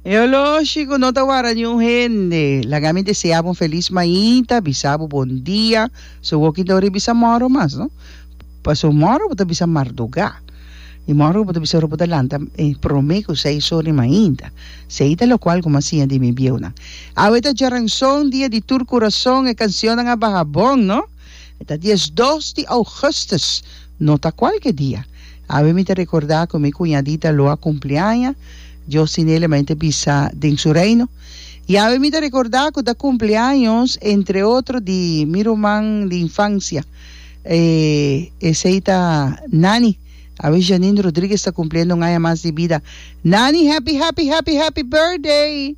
E oloshi ku no ta wara niun hende. Laga mi deseabu un felis mainta, bisabu bon dia, so woki ta ori bisa moro mas, no? Paso moro bo ta bisa mardugá. I moro bo ta bisa ora bo ta lanta eh, promé ku seis ora di mainta. Sei ta lokual kuma siña di mi bieunan. Awe ta djaranson, dia di tur kurason, e kansionnan a baha bon, no? E ta dies dos di Augustus, no ta cualke dia. Awe mi ta recorda cu mi cuñadita lo a cumpli aña, Dios tin Ele ma E ta bisa den Su Reino. Y awe mi ta recorda cu ta cumpleaños, entre otro, di mi ruman di infancia, e esey ta Nani. Awe Janine Rodriguez ta cumpliendo un aña mas di bida. Nani, happy, happy, happy, happy birthday!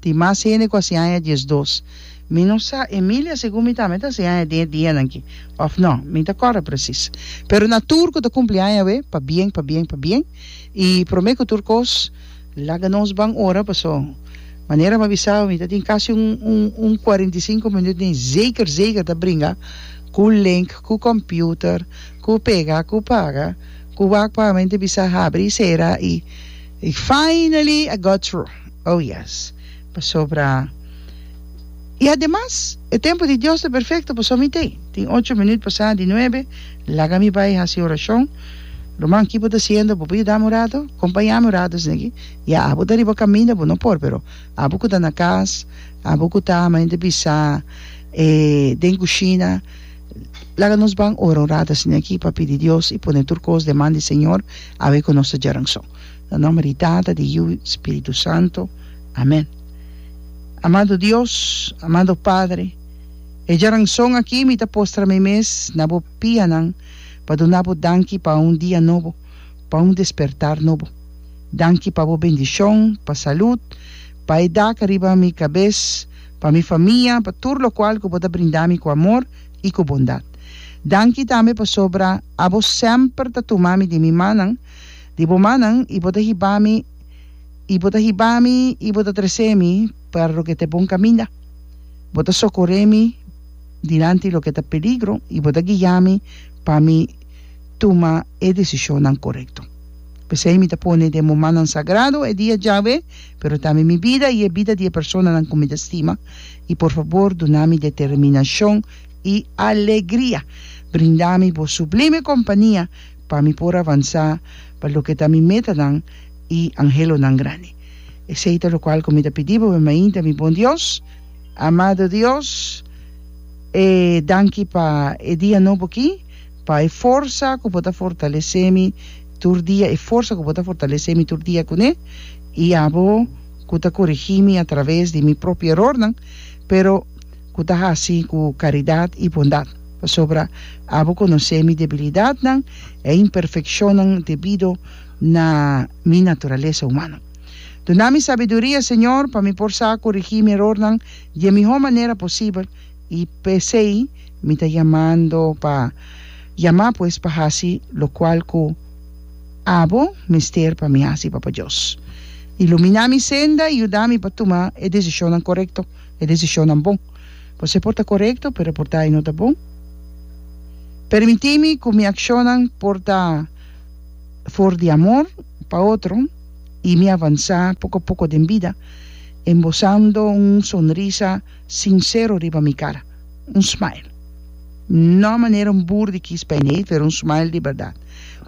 Tin mas hende ku a si aña diesdos. Mi no sa, Emilia, segun mi tambe ta si aña den e dianan ki, òf nò, mi ta kòrda presis. Pero na tur ku ta kumpli aña awe, pabien, pabien, pabien, i promé ku tur kos, laga nos ban ora, paso, manera mi a bisa awe, mi ta tin kasi un, un, un kuarenta i sinku minüt den zeker, zeker ta bringa ku link, ku kòmpiuter, ku pega, ku paga, ku wak pagamente bisa habri i sera, i finally I got through. Oh yes, pasobra i ademas e tempu di Dios ta perfecto, pasobra mi t'ei. Tin ocho minut pasá di nuebe, laga mi bai haci oracion. Ruman, ki bo ta haciendo? Bo por yudami un ratu? Compañami un ratu esne'ki? Ya, abo ta riba caminda, bo no por, pero abo cu ta na cas, abo cu ta, mi a hende bisa, e den cushina, laga nos ban ora un ratu esne'ki pa pidi Dios i pone tur cos deman di Señor, awe cu nos ta djaran so. Na nomber di Tata, di Yu, i Spiritu Santo. Amen. Amado Dios, amado Padre, e djaranson aki mi ta postra mi mes na bo pianan pa duna bo danki pa un dia nobo, pa un despertar nobo. Danki pa bo bendishon, pa salud, pa e dak riba mi kabes, pa mi famia, pa tur lokual ku bo ta brinda mi ku amor i ku bondat. Danki tambe pasobra abo semper ta tuma mi den mi manan, di bo mannan, i bo ta hiba mi, i bo ta hiba mi, i bo ta tres'é mi pa loke ta bon kaminda, bo ta sokor'é mi dilanti loke ta peligro, i bo ta guia mi pa mi tuma e desishonnan korekto. P'esei mi ta pone den bo mannan sagrado e dia djawe, pero tambe mi bida i e bida di e personanan ku mi ta stima, i por fabor duna mi determinashon i alegria, brinda mi bo sublime kompania, pa mi por avansá pa loke ta mi metanan i anhelonan grandi. Esei ta lokual ku mi ta pidi bo, mi mainta, mi bon Dios. Amado Dios, e danki pa e dia nobo akí, pa e forsa ku bo ta fortalesé mi tur dia, e forsa ku bo ta fortalesé mi tur dia kuné, i abo ku ta korigí mi atraves di mi propio erornan, pero, ku ta hasi ku karidat i bondat, pasobra abo konosé mi debilidatnan e imperfekshonnan debido na mi naturalesa humano. Duna mi sabiduria, Señor, pa mi por sa korigí mi erornan di e mihó manera posibel, i p'esei mi ta yamando pa yamá pues pa hasi lokual ku abo mester pa mi hasi, Papa Dios. Iluminá mi senda i yuda mi pa tuma e desishonnan korekto. e desishonnan bon. Por se por ta korekto, pero por ta i no ta bon. Permití mi ku mi akshonnan por ta for di amor pa otro i mi avansá poko a poko den bida, embosando un sonrisa sinsero riba mi kara, un smile. No manera un bur di kis pijneet, pero un smile di bèrdat,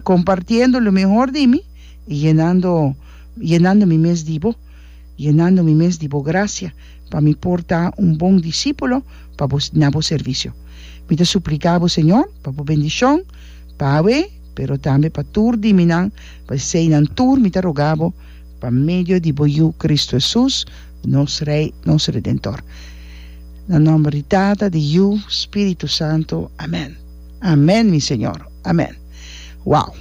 kompartiendo lo mihor di mi i yenando yenando mi mes di bo. yenando mi mes di bo gracia, pa mi por ta un bon discípulo pa bo na bo servicio. Mi ta suplica bo, Señor, pa bo bendicion pa awe, pero tambe pa tur di minan, pa eseinan tur mi ta roga bo, pa medio di bo Yu Cristo Jesús, nos Rey, nos Redentor. Na nomber di Tata, di Yu, Spiritu Santo. Amen. Amen, mi Señor. Amen. Wow!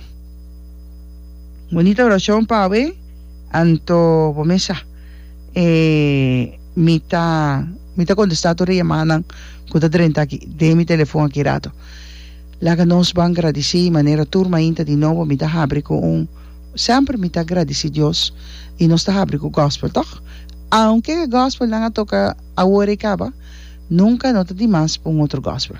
Bonita oracion pa awe. Anto bo mesa e mi ta mi ta contesta tur e yamadanan cu ta drenta aki den mi telefon aki rato. Laga nos ban gradici y manera tur mainta di nobo mi ta habri cu un semper mi ta gradici Dios y nos ta habri cu gospel toch? Aunke e gospel nan a toca awor y caba nunca no ta di mas pa un otro gospel.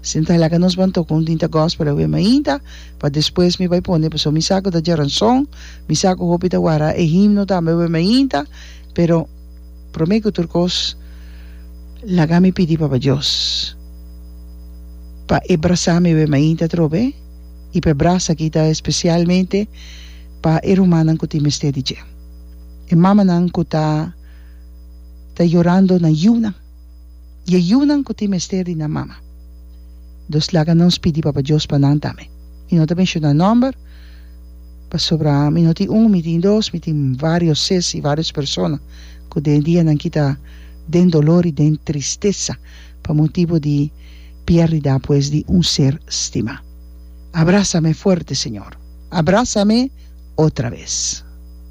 Sinta laga nos ban toca un tinta gospel awe mainta pa despues mi bay pone pasobra mi sa cu ta djaranzon Mi sa ku hopi ta wara e himno tambe wen mi ainta, pero promé ku tur kos laga mi pidi Papa Dios pa e brasa mi wen mi ainta atrobe i pa e brasa aki ta espesialmente pa e rumannan ku tin mester di dje, e mamanan ku ta ta yorando nan yunan i e yunan ku tin mester di nan mama. Entos laga nos pidi Papa Dios pa nan tambe. Mi no ta menshoná nòmber. Pasobra mi no tin un, mi tin dos, mi tin vários ses i vários persona ku den dianan kita den dolor i den tristesa pa motibu di piérdida apues di un ser stimá. Abrasa mi fuerte, Señor. Abrasa mi otra bes.